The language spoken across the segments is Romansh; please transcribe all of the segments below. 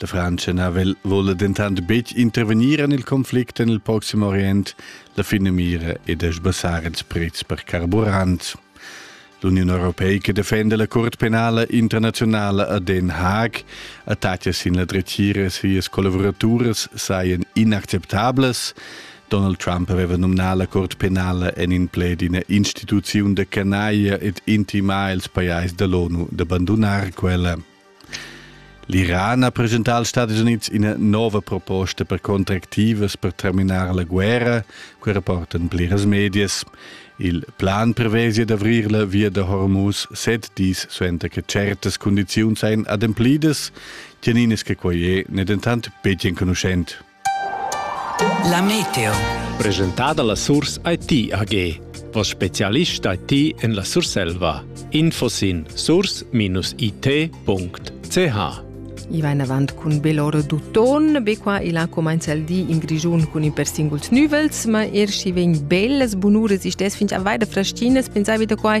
Der Francenavel wolle dentant betg intervegnir en il conflict en il Proxim Orient, la finamira è da sbassar ils prezs per carburant. L'Union Europeica defenda la Curt penala internazionala a Den Haag. Attacke sin la dretgira sias collaboraturas saien inacceptablas. Donald Trump aveva nominà la Curt penala en in pled d'ina instituziun da canaglia ed intimà ils pajais da l'ONU d'abbandunar quella. L'Iran ha presentà als Stadis Unids ina nova proposta per contractivas per terminar la guerra, quai rapportan pliras medias. Il plan prevesi d'avrir la via da Hormuz set dis suenter che certas condiziuns ein ademplidas, tgeninas che quei è ne dentant betg enconuschent. La meteo. Presentada la Surs IT AG. Vos specialist IT en la Surselva. Info sin surs-it.ch I va in avant cun Belor Duton. Be qua il ha comenza il di in Grigiun cun i per singuls nüvels, ma er schi vegn bellas bunuras istes fin a vaida fraschinas, pensavi da quai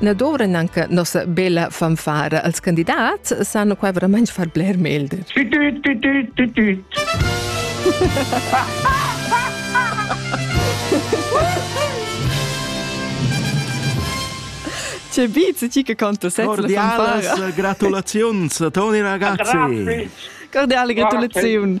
Na dovran anche nossa bella fanfara als candidats, sanno qua veramente far bler melde. C'è Beats, chi che conta set Cordialas, gratulazions, Toni ragazzi. Cordiale gratulazioni.